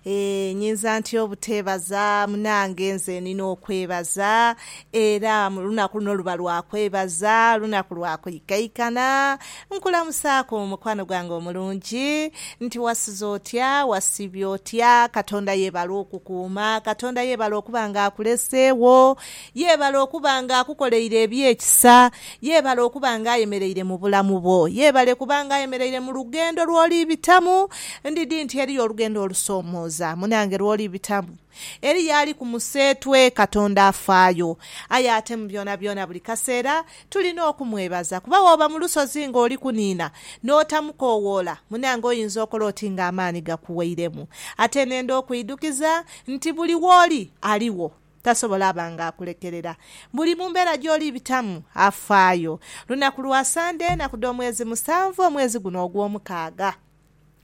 Eeh nyinza ntya obuteebaza munange nze nina okwebaza era olunaku luno luba lwa kwebaza lunaku lwa kwikaikana nkulamusaaku mukwano gwange omulungi nti wasiza otya wasiibye otya katonda yeebale okukuuma katonda yeebale okuba nga akuleseegho. Yeebale okuba nga akukoleire eby'ekisa. Yeebale okuba nga ayemereire mu bulamu bwo. Yeebale kuba nga ayemereire mu lugendo lw'oli bitamu. Ndidhi nti eriyo olugendo olusomooza munange lw'oli bitamu. Eriyo ali ku museetwe. Katonda afaayo. Aye ate mu byonabyona buli kaseera tulina okumwebaza kuba bw'oba mu lusozi ng'oli kuniina n'otamukoowoola, munange oyinza okola oti ng'amaani gakuweiremu. Ate nenda okwidhukiza nti buli w'oli aligho. Tasobola aba nga akulekerera. Buli mu mbeera gy'oli bitamu, afaayo. Lunaku lwa Sande, enaku dh'omwezi musanvu, omwezi guno ogw'omukaaga.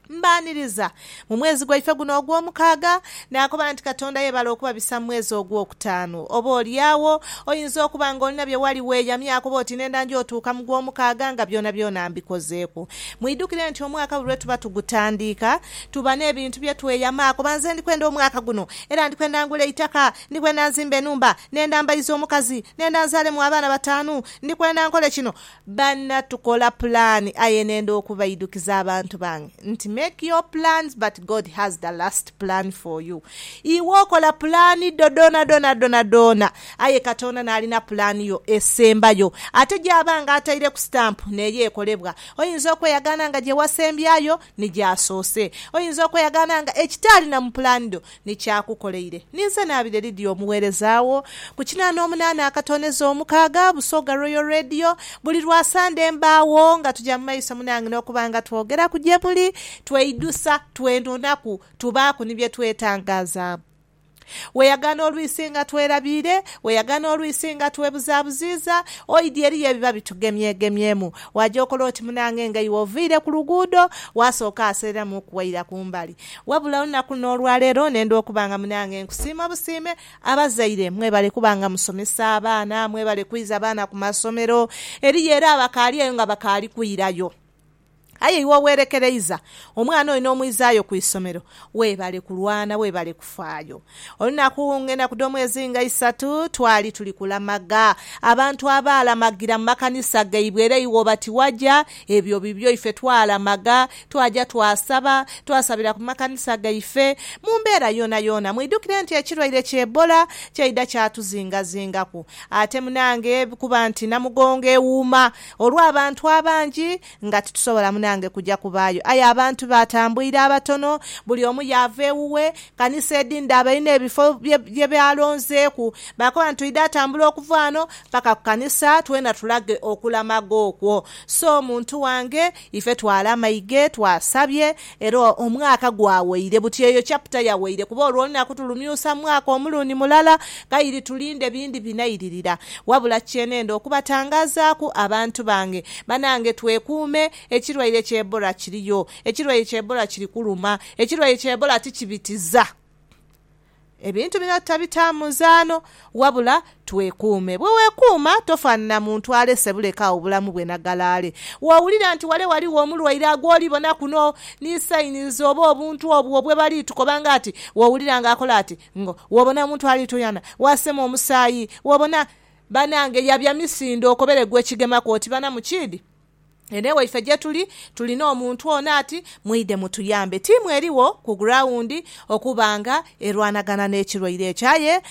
Mbaaniriza mu mwezi gwaife guno ogw'omukaaga. Naakoba nti, Katonda yebale okubabisa mu mwezi ogw'okutaanu. Oba oli agho, oyinza okuba nga olina bye wali weeyamye akoba oti nenda nja otuuka mu gw'omukaaga nga byonabyona mbikozeeku. Mwidhukire nti omwaka buli lwe tuba tugutandiika, Tuba n'ebintu bye tweyama kuba nze ndi kwenda omwaka guno era ndi kwenda ngule eitaka, ndi kwenda nzimbe enhumba, nenda mbaize omukazi, nenda nzaalemu abaana bataanu, ndi kwenda nkole kino. Banna tukola pulaani aye nenda okubaidukiza abantu bange nti make your plans but God has the last plan for you. Iwe okola pulaani dho dhoonadhoona dhoonadhoona aye Katonda n'alina pulaani yo esembayo ate gy'aba nga ataireku sitampu n'eyo ekolebwa. Oyinza okweyagaana nga gye wasembyayo Ni gy'asoose. Oyinza okweyagaana nga ekitaali na mu pulaani dho ni ky'akukoleire. Ninze naabire Lydia omugheereza wo, ku kinaana omunaana akatooneza omukaaga, Busoga Royal Radio. Buli lwa Sande mbaagho nga tuja mu maiso munange n'okuba nga twogeraku gye muli, tweidhusa, twenonaku, tubaaku ni bye twetangazaamu. Weeyagaana olwisi nga twerabiire, weeyagaana olwisi nga twebuzaabuziiza, oidhi eriyo ebiba bitugemyegemyemu. Waaja okola oti munange nga iwe oviire ku luguudo, waasooka aseereramu okuwaira ku mbali. Wabula olunaku n'olwaleero nenda okuba nga munange nkusiima obusiime. Abazaire mwebale kuba nga musomesa abaana, mwebale kwiza baana ku masomero. Eriyo era abakaali eyo nga bakaali kwirayo. Aye iwe oweerekereiza omwana oyo n'omwizaayo ku isomero, weebale kulwana, weebale kufaayo. Olunaku ng'enaku dh'omwezi nga isatu, twali tuli kulamaga. Abantu abaalamagira mu makanisa gaibwe era iwe oba tiwaja, ebyo bibyo. Ife twalamaga, twaja twasaba, twasabira ku makanisa gaife. Mu mbeera yoonayoona, mwidhukire nti ekirwaire ki Ebola kyaidha kyatuzingazingaku. Ate munange kuba nti Namugongo ewuuma, Olw'abantu abangi nga titusobola munange kuja kubaayo, aye abantu baatambwire abatono, buli omu yaava ewuwe. Kanisa edhindhi abalina ebifo bye baalonzeeku baakoba nti oidha atambula okuva ghano paka ku kanisa twena tulage okulamaga okwo. So muntu wange ife twalamaige, twasabye Era omwaka gwaweire. Buti eyo chapter yaweire kuba olwo olunaku tulumyusa mwaka omulundi mulala kairi tulinde bindi binairirira. Wabula kyenenda okubatangazaaku abantu bange banange twekuume ekirwaire kya Ebola kiriyo. Ekirwaire kya Ebola kiri kuluma. Ekirwaire kya Ebola tikibitiza. Ebintu bino tutabita muzaano, wabula twekuume. Bwe weekuuma, tofaanana muntu alese buleka agho bulamu bwe na galaale. W'owulira nti wale ghaligho omulwaire agw'oli bona kuno, ni sayinizi oba obuntu obwo bwe bali tukoba nga ati, w'owulira ng'akola ati, ngo, w'obona omuntu ali tuyana, w'asema omusaayi, w'obona. Banange, yabya misindo okobere gw'ekigemaku oti bana mukiidhi. Eno ewaife gyetuli tulina omuntu ono ati mwidhe mutuyambe. Ttiimu erigho ku gurawundi okuba nga erwanagana n'ekirwaire ekyo aye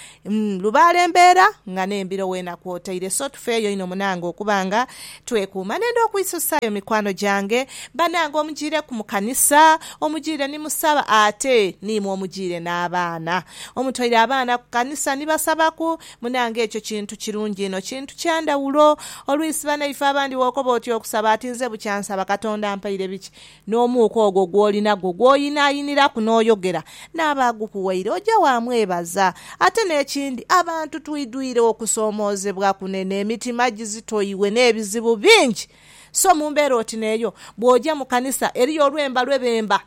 lubaale mbeera nga n'embiro weena kwotaire so tufeeyo inho munange okuba nga twekuuma. Nenda okwisusaayo mikwano gyange banange omujiireku mu kanisa, omujiire ni musaba ate niimwe omujiire n'abaana. Omutoire abaana ku kanisa ni basabaku Munange ekyo kintu kirungi inho, kintu kya ndhawulo. Olwisi banaife abandi bw'okoba oti okusaba ati nze bukya nsaba Katonda ampaire biki, n'omuuka ogwo gw'oli nagwo gw'oyinayiniraku n'oyogera n'aba agukuwaire oja waamwebaza. Ate n'ekindi, abantu twidhwire okusoomoozebwa kunene, emitima gizitoiwe n'ebizibu bingi. So mu mbeera oti n'eyo, bw'oja mu kanisa eriyo olwemba lwe bemba.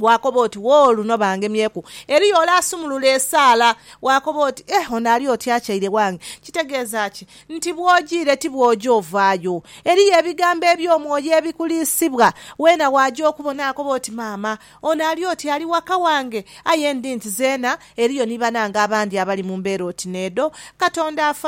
Waakoba oti, Woo, luno bangemyeku. Eriyo ole asumulula esaala. Waakoba oti, Eh, ono ali oti akyaire wange. Kitegeeza ki? Nti bw'ojiire ti bw'oja ovaayo. Eriyo ebigambo eby'omwoyo ebikuliisibwa. Weena waaja okubo naakoba oti, Maama, ono ali oti ali waka wange. Aye ndi nti zeena eriyo ni banange abandi abali mu mbeera oti n'edho. Katonda afa.